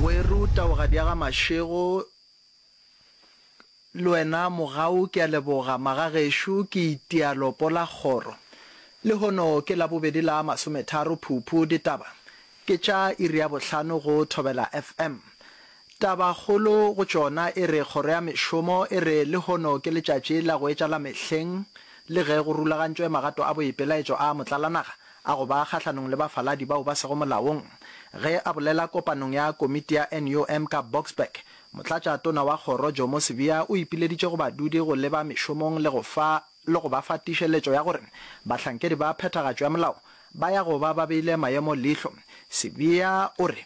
Weru taogadi ya ga Mashego le wena mogau ke a leboga magagešo ke itialo pola kgoro lehono ke la bobedi la masometharo phuphu ditaba ke tša iri ya bohlano go thobela fm taba kgolo go tšona e re kgoro ya mešomo e re lehono ke letšatši la go etšala mehleng le ge go rulagantšwe magato a boipelaetšo a motlalanaga a go ba kgahlanong le bafaladi bao ba sego molaong. Ge a bolela kopanong ya komiti ya NUM ka Boksburg, Motlatša Tona wa Kgoro Jomo Sibiya o ipileditše go badudi go leba mešomong le go fa le go ba fa tiišeletšo ya gore bahlankedi ba phethagatšo ya molao ba ya go ba ba beile maemo leihlo. Sibiya o re.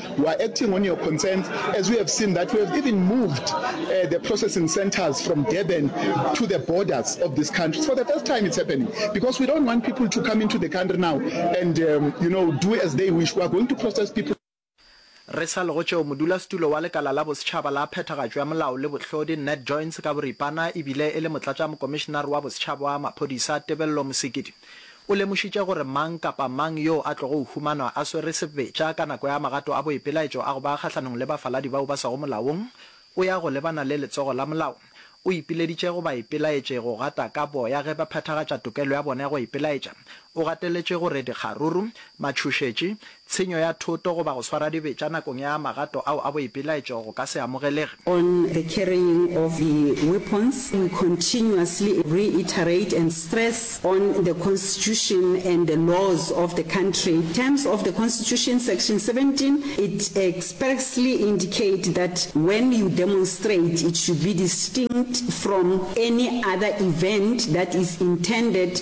You are acting on your concerns as we have seen that we have even moved uh, the processing centers from Durban to the borders of this country. For the first time it's happening because we don't want people to come into the country now and um, you know do as they wish. We are going to process people Re sa lego tšeo, modulasetulo wa lekala la bosetšhaba la phethagatšo ya molao le bohlodi Ned Joins ka boripana e bile e le motlatšamokomišenare wa bosetšhaba wa maphodisa Tebello Mosekedi. O lemošitše gore mang kapa mang yoo a tlogo humanwa a swere sebetša ka nako ya magato a boipelaetšo a go ba kgahlanong le bafaladi bao ba swago molaong, o ya go lebana le letsogo la molao. O ipileditše go baipelaetše go gata ka boya ge ba phethagatša tokelo ya bona ya go ipelaetša. O gateletše gore dikgaruru, matšhošetši, Tshenyo ya thoto goba go swara dibetša nakong ya magato ao a boipelaetšo go ka se amogelege. on the carrying of the weapons, we continuously reiterate and stress on the Constitution and the laws of the country. In terms of the Constitution, Section 17, it expressly indicate that when you demonstrate, it should be distinct from any other event that is intended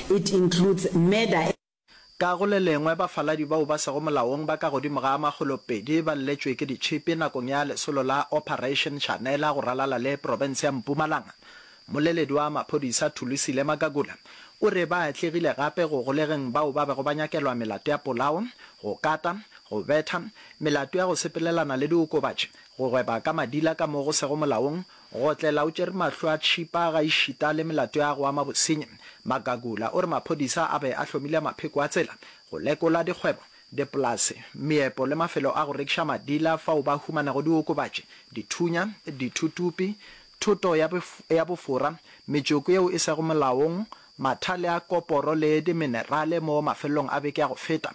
It includes murder. Ka go le lengwe, bafaladi bao ba sego molaong ba ka godimo ga a makgolo pedi ba lletšwe ke ditšhipi nakong ya lesolo la Operation Chanela go ralala le profense ya Mpumalanga. Mmoleledi wa maphodisa Thulisile Magagula o re ba atlegile gape go golegeng bao ba bego ba nyakelwa melato ya polao, go kata, go betha, melato ya go sepelelana le diokobatši, go gweba ka madila ka mo go sego molaong, Go otlela o tšere mahlo a tšhipa gaešita le melato ya go ama bosenyi, Magagula o re maphodisa a be a hlomile mapheko a tsela go lekola dikgwebo, dipolase, meepo le mafelo a go rekiša madila fao ba humanego diokobatši, dithunya, dithutupi, thoto ya bofora, metšoko yeo e sego molaong, mathale a koporo le diminerale mo mafelelong a beke ya go feta.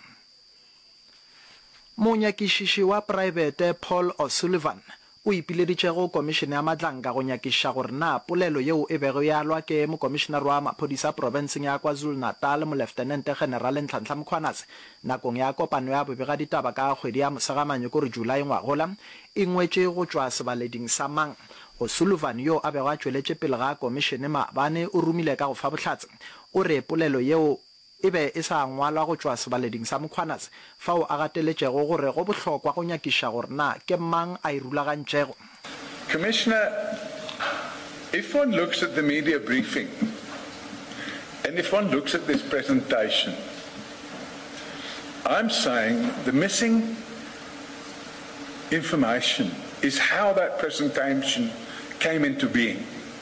Monyakišiši wa praebete Paul O'Sullivan o ipileditšego Komišene ya Matlanka go nyakišiša gore na polelo yeo e bego e alwa ke Mokomišenare wa Maphodisa profenseng ya KwaZulu-Natal Moleftenente Generale Nhlanhla Mkhwanazi nakong ya kopano ya bobegaditaba ka kgwedi ya Mosegananyo kore Julae ngwagola e ngwetše go tšwa sebaleding sa mang. O'Sullivan yo a bego a tšweletše pele ga Komišene maabane o rumile ka go fa bohlatse o re polelo yeo e be e sa ngwalwa go tšwa sebaleding sa Mkhwanazi, fao a gateletšego gore go bohlokwa go nyakiša gore na ke mang a e rulagantšego. Commissioner, if one looks at the media briefing and if one looks at this presentation, I'm saying the missing information is how that presentation came into being.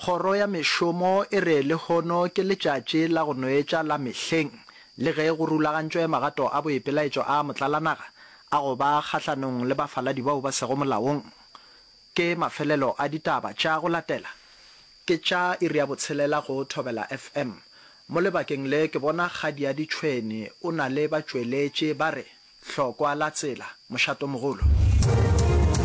Kgoro ya Mešomo e re lehono ke letšatši la go no etša la mehleng le ge go rulagantšwe magato a boipelaetšo a motlalanaga a go ba kgahlanong le bafaladi bao ba sego molaong. Ke mafelelo a ditaba tša go latela. Ke tša iri ya botshelela go Thobela FM. Mo lebakeng le ke bona Kgadiadi Tšhweni o na le batšweletši ba re, Hlokwa la tsela, Mošatomogolo.